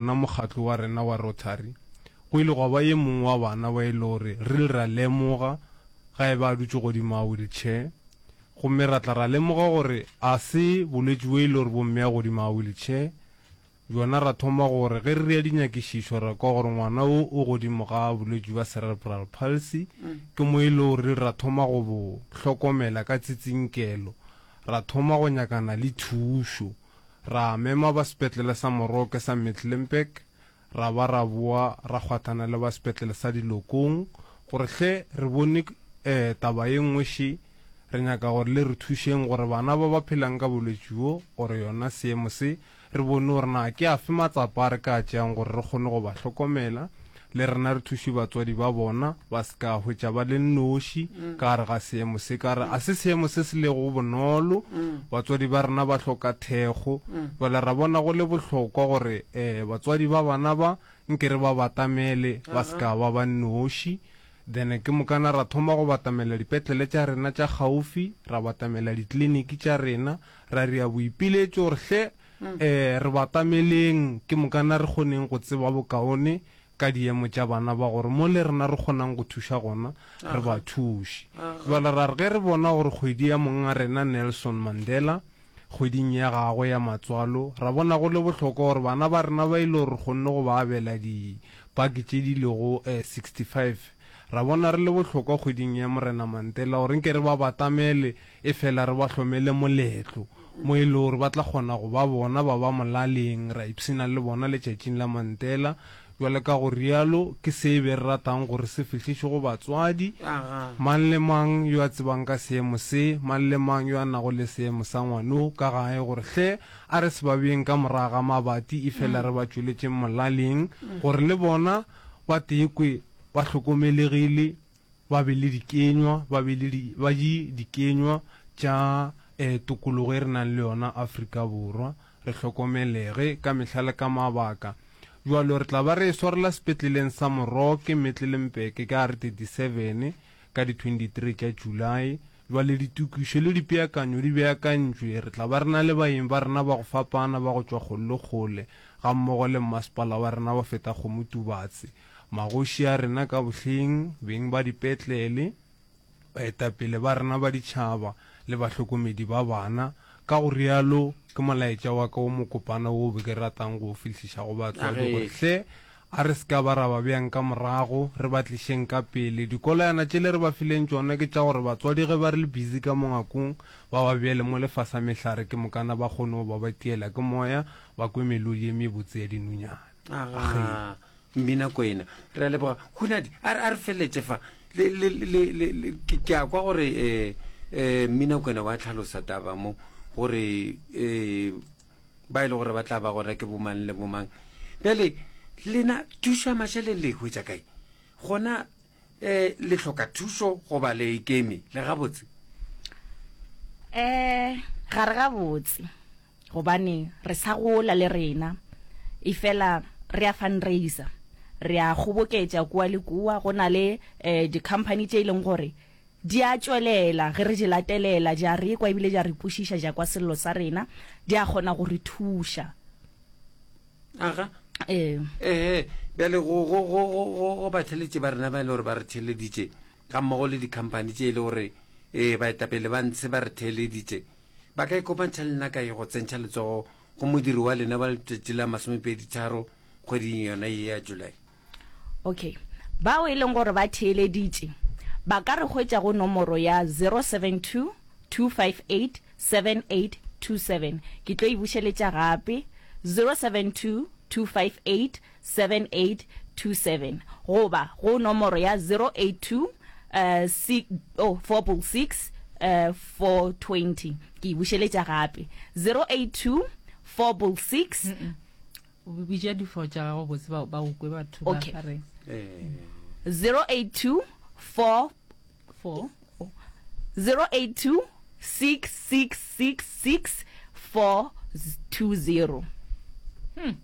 Nna mokgatlo wa rena wa Rotary, go ile gwa ba ye mongwe wa bana ba e le gore re ile ra lemoga ga e ba a dutše godimo ga wheelchair, gomme ra tla ra lemoga gore ga se bolwetši bjo e le gore bo mmea godimo ga wheelchair. Bjona ra thoma gore ge re dira dinyakišišo ra kwa gore ngwana wo o godimo ga bolwetši bja cerebral palsy, ke mo e le gore re ile ra thoma go bo hlokomela ka tsitsinkelo, ra thoma go nyakana le thušo. ra mema ba sepetlele sa Moroke sa Mecklenburg ra ba ra boa ra kgwathana le ba sepetlele sa Dilokong gore hle re bone taba ye nngwe še, re nyaka gore le re thušeng gore bana ba ba phelang ka bolwetši bjo or yona seemo se re bone gore na ke afe matsapa a re ka a tšeang gore re kgone go ba hlokomela, le rena re thuše batswadi ba bona ba se ka hwetša ba le nnoši ka gare ga seemo se, ka re a se seemo se se lego bonolo. Batswadi ba rena ba hloka thekgo, bjale ra bona go le bohlokwa gore um batswadi ba bana ba nke re ba batamele ba se ka ba ba nnoši. Then ke mokana ra thoma go batamela dipetlele tša rena tša kgaufsi, ra batamela ditliliniki tša rena, ra dira boipiletšo gore hle Ee, re batameleng ke mokana re kgoneng go tseba bokaone ka diemo tša bana ba gore mo le rena re kgonang go thuša gona re ba thuše. Bjale ra re ge re bona gore kgwedi ya mong'a rena Nelson Mandela, kgweding ya gagwe ya matswalo, ra bona go le bohlokwa gore bana ba rena ba e le gore re kgonne go ba abela dipaki tše di lego 65, ra bona re le bohlokwa kgweding ya Morena Mantela gore nke re ba batamele Efela re ba hlomele moletlo mo e lego gore ba tla kgona go ba bona ba ba molaleng, ra ipshina le bona letšatšing la Mantela. Bjale ka go realo ke se e be re ratang gore se fihlišwe go batswadi, mang le mang yo a tsebang ka seemo se, mang le mang yo a nago le seemo sa ngwano ka gae, gore hle a re se ba beyeng ka morago ga mabati efela re ba tšweletšeng molaleng gore le bona ba teekwe ba hlokomelegile. ba be le dikenywa, ba be le di, ba di, dikenywa tša eh, tokologo e re nang le yona Afrika Borwa, re hlokomelege ka mehla le ka mabaka. Bjalo re tla ba re e swarela sepetleleng sa Moroke, Metlelempeke, ka re 37, ka di 23 tša July. Bjale ditokišo le dipeakanyo di beakantšwe, re tla ba re na le baeng ba rena ba go fapana ba go tšwa kgole le kgole, gammogo le mmasepala wa rena wa Fetakgomo Tubatse. magoši a rena ka bohleng, beng ba dipetlele, baetapele ba rena ba ditšhaba le bahlokomedi ba bana. Ka go realo, ke molaetša wa ka wo mokopana woo be ke ratang go o fihliša go batswadi gore hle a re se ka ba ra ba beyang ka morago, re ba tlišeng ka pele. Dikolayana tšele re ba fileng tšona ke tša gore batswadi ge ba re le busy ka mo ngakong, ba ba beele mo lefasa mehlare ke mokana ba kgone go ba ba tiela ke moya, ba kwe melodi e mebotse ya dinunyana. aga mmina kwena re a leboga hunadi a re- a re feleletse fa Le- le- le- le- le- ke ke a kwa gore um um mmina kwena wa tlhalosa taba mo gore um ba e le gore ba tla ba gona ke bomang le bomang bjale lena thuša mašaleng le hwetsa kae gona e le hloka thuso goba le ikemi le gabotse um ga re gabotse gobane re sa gola le rena e fela re a fundraiser re a kgoboketša kua le kua go na le um di-company tše e leng gore di a tšwelela ge re di latelela di a re kwa ebile di a re kwešiša ja kwa sello sa rena di a kgona go re thuša aga ee ee bjale go go go go go go batheletše ba rena ba e le gore ba re theleditše ga mmogo le dikhamphani tše e le gore ee baetapele ba ntshe ba re theleditše ba ka ikopantšha le nna ka ye go tsentšha letsogo go modiri wa lena wa letšatši la masomepedi tharo kgweding yona ye ya july Ok. Bao e leng gore ba theeleditše ba ka re hwetša go nomoro ya 072-258-7827. Ke tlo e bušeletša gape, 072-258-7827 goba go nomoro ya 082-466-420. Ke e bušeletša gape, 082-466-420. bitša difo tša gago botse ba ba ukwe batho ba Okay. gare Eh, 082 4 fo 082 6666 420 Hmm.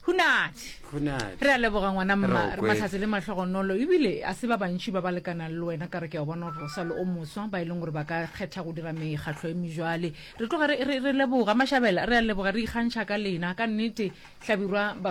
hunati go na re a leboga ngwana mma Re okwe. matlhatse le mahlogonolo ebile a se ba bantši ba ba lekanang le wena ka re ke a bona gore o sa le o moswa ba e leng gore ba ka kgetha go dira mekgatlho e mejwale Re tloga re, re, re leboga, mašabela, re a leboga, re ikgantšha ka lena. Ka nnete, Hlabirwa, Baswa.